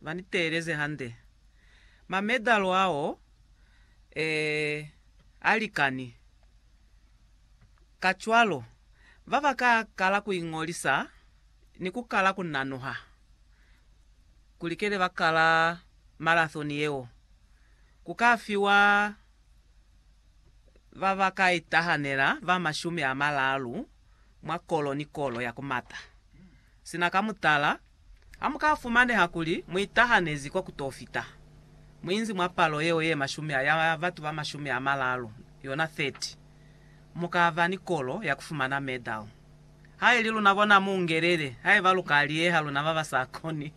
Ba ni teeleze hande. Ma medal ao, ee, a likani. Kacwalo, ba ba ka kala ku iñolisa ni ku kala ku nanuha kuli kele ba kala marathon yeo, ku ka fiwa ba ba ka itahanela ba mashumi a malaalu mwa kolo ni kolo ya ku mata. Sina ka mutala, Ha mu ka fumaneha kuli mu itahanezi kwa ku t'o fita, mu inzi mwa palo yeo ye mashumi a ya batu ba mashumi a malalu, yona 30, mu ka ba ni kolo ya ku fumana medal. Ha i li luna bona mu ngelele, haiba lu ka liyeha luna ba ba sa koni.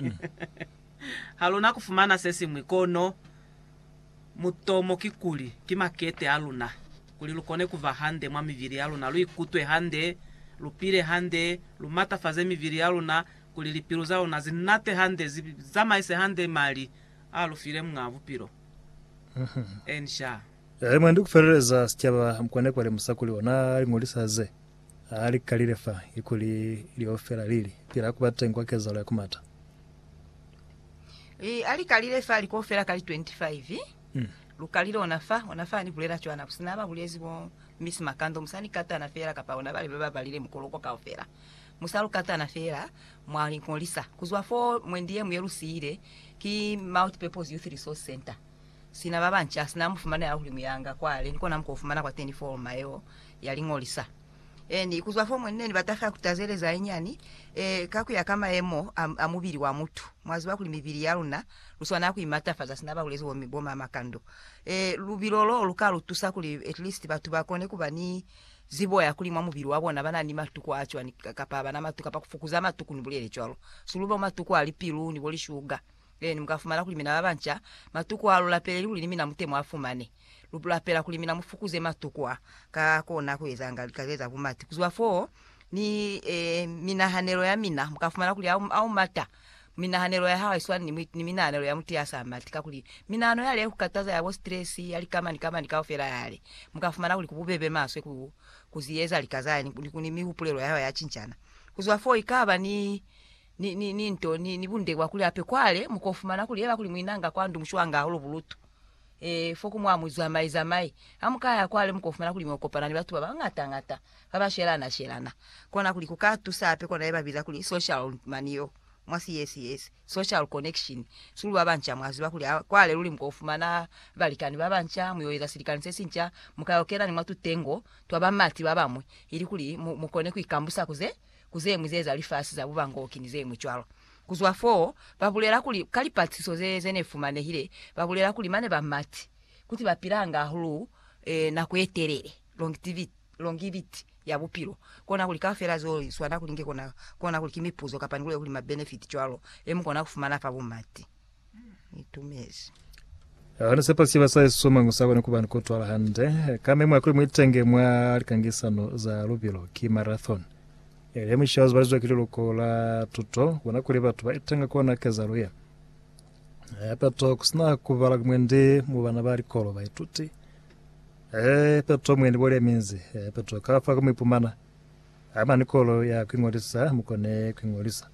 Ha lu na ku fumana se siñwi, kono Mutomo kikuli, ki makete a luna, kuli lu kone ku ba hande mwa mibili ya luna, lu ikutwe hande, lu pile hande, lu matafaze mibili ya luna, kuli lipilu za luna zi nate hande, zi zamaise hande mali a lu file Muñaa Bupilo. Ensha. Halimwandi ku feleleza sicaba, mukone ku ba lemusa kuli ona a li ñolisa ze. Ha li kalile fa ikuli leo fela, li li, Pila ku ba teñi kwa kezalo ya ku mata. Li, Ha li kalile fa liko fela ka li 25, lu kalile ona fa, ona fa ni bulela cwana, bu sina ba bulezi bo Miss Makando, mu sa ni katana fela, kapa bona bale ba ba balile mukoloko kaufela, mu sa lu katana fela, mwa li ngolisa. Ku zwa foo, mwendi ye mu ye lu siile, ki Multipurpose Youth Resource Centre. Sina ba banci ha sina mufumana ya hulimu yanga kwale, ni kona muko fumana kwateni forma yeo ya liñolisa. E ni ikuzwa fomu nne ni bata fela ku tazeleza inyani e ka kuya ka mayemo a, a mubili wa mutu. Mwa ziba kuli mibili ya luna lu swana ku imatafaza sina ba bulezi bo, bo mamakando. E lubilo loo lu ka lu tusa kuli at least batu ba kone kuba ni zibo ya kuli mwa mubili wa bona bana ni matuku a cwani, kapa abana matuku, kapa ku fukuza matuku, ni bulele cwalo. Su lu bo matuku a lipilu ni bo lishuga. Lenu mu ka fumana kuli mina ba banca, matuku a lu lapeleli kuli ni mina mute mu a fumane. Lu lapela kuli mina mu fukuze matuku a ka kona ku ezanga lika ze za bumati. Ku zwa foo, ni minahanelo ya mina, mu ka fumana kuli a, a u mata. Minahanelo ya hao ha i swani ni, ni minahanelo ya mutu ya sa mati, kakuli minahano yale ya ku kataza, ya bo stress, ya lika mani ka mani kaufela yale, mu ka fumana kuli ku bubebe maswe ku, ku zi eza lika zale ni, ni ku ni mihupulelo ya hao ya cincana. Ku zwa foo, i ka ba ni. ni, ni, ni nto, ni, ni bundekwa kuli ape kwale, mukofumana kuli eba kuli mwinanga kwa ndu mushwanga hahulu bulutu. E, fo ku mwa muzwamai zamai. Ha mukaya kwale mukofumana kuli mwa kopana ni batu baba ngata ngata, baba shelana shelana. Kona kuli ku ka tusa hape kona yeba biza kuli social, mani yo, mwa si yes yes, social connection. Sulu baba nca mwa ziba kuli ha kwale luli mukofumana balikani baba nca, muyo eza silikani se sinca, mukayo kena ni mwa tutengo twa bamati babamwi, ili kuli mu, mukone ku ikambusa ku ze, ku zeñwi ze za lifasi za bubangoki ni zeñwi cwalo. Ku zwa fo, ba bulela kuli, ka lipatisiso ze, ze ne fumanehile, ba bulela kuli mane ba mati, kuti ba pilanga hahulu eh, nako ye telele, longtivity, longivity ya bupilo. Kona kuli kaufela zeo li swana, kuli nge kona, kona kuli ki mipuzo kapa ni kule kuli mabenefiti cwalo, e mu kona ku fumana fa bumati. itumezi. Hana sepa siba sa Yesu somango sa kona kuba ni kutwala hande ka memo ya kuli muitenge mwa likangisano za lubilo ki marathon. Elia Musha uzibalizwa ki liluko la tuto kubona kuli batu ba itenga kona kezalo ye. Peto kusina kubala mwendi mu bana ba likolo baituti Eh, peto mwendi bole minzi Eh, peto kafa kumuipumana ama nikolo ya kuingolisa mukone kuingolisa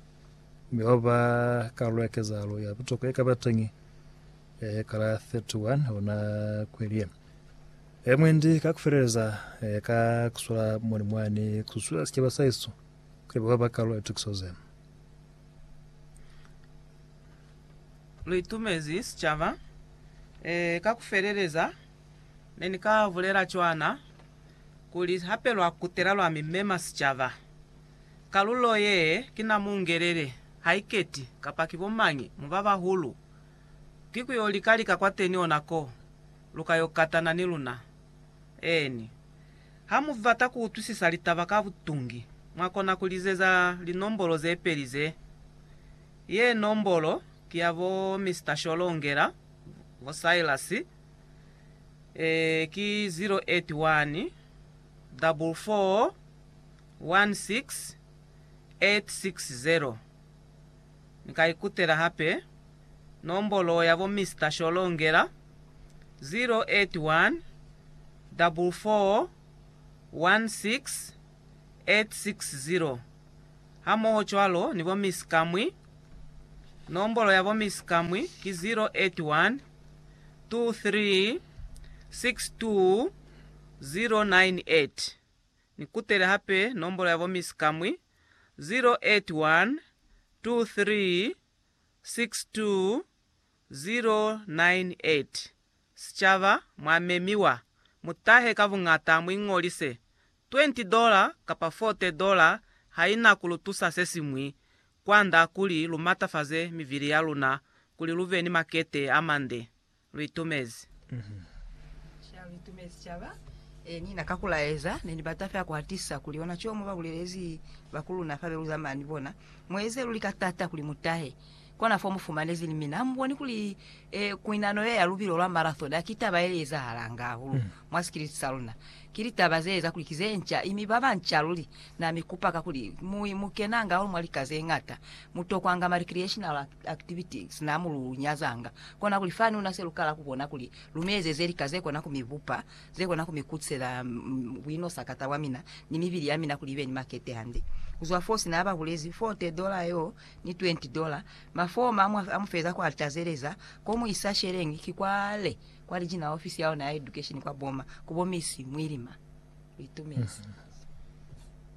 Mi ho ba kalulo ya kezahalo ya butokwa ye kaba teñi ya hekala 31 hona kweli ye. E mwendi ka kufeleleza e ka kusula moni mwani kususueza sicaba sa hesu kuli ba ba kalulo ya tukiso ze. Lu itumezi sicaba e ka kufeleleza. Ne ni ka bulela cwana kuli hape lwa kutela lwa mi mema sicaba. Kalulo ye ki na mu ngelele, haiketi kapa ki bo mañi mu ba bahulu, ki ku yo lika lika kwateni ona ko lu ka yo katana ni luna. Eeni. Ha mu bata ku utwisisa litaba ka butungi, mwa kona ku lizeza linombolo ze peli ze. Ye nombolo ki ya bo Mister Sholongela, bo Silas, e, ki 081 444 444. 16860 Ni ka ikutela hape nombolo ya bo Mister Sholongela, 0814416860, hamoho cwalo ni bo Miss Kamwi, nombolo ya bo Miss Kamwi ki 0812362098. Ni kutele hape nombolo ya bo Miss Kamwi, 0812362098. Sicaba, mwa memiwa, mu tahe ka buñata mu iñolise. Twenty dola kapa forte dola ha i na ku lu tusa se siñwi kwand'a kuli lu matafaze mivili ya luna kuli lu be ni makete a mande. Litumezi. Ca litumezi caba e ni na ka kulaeza. Ne ni bata fela ku atisa kuli ona co mu ba bulelezi bakuluna fa be lu zamana ni bona. Mu eze luli ka tata kuli mu tahe kona fo mu fumanezi. Ni mina ha mu boni kuli e kuinano ye ya lubilo lwa marathon ha ki taba ye li ezahalanga hahulu? mwa sikiliti sa luna. Ki litaba ze eza kuli ki ze nca, imi ba banca luli. Na mi kupa ka kuli, Mu, mu kenanga hahulu mwa lika ze ñata. Mu tokwanga ma recreational activities, na mu lu nyazanga. Kona kuli fani una se lu kala ku bona kuli lu mi ezeze lika ze kona ku mi bupa, ze kona ku mi kutisela buinosakata bwa mina, ni mibili ya mina kuli ibe ni makete hande. Kuzwa foo, sina ba bulezi, forty dollar yo, ni twenty dollar, mafoma a mu, a mu feza kwa alta ze leza, ko mu isa sheleñi, ki kwale. Kwa liji na ofisi ya ona ya edukesheni kwa Boma, ku Bomisi Mwilima, lu itumezi.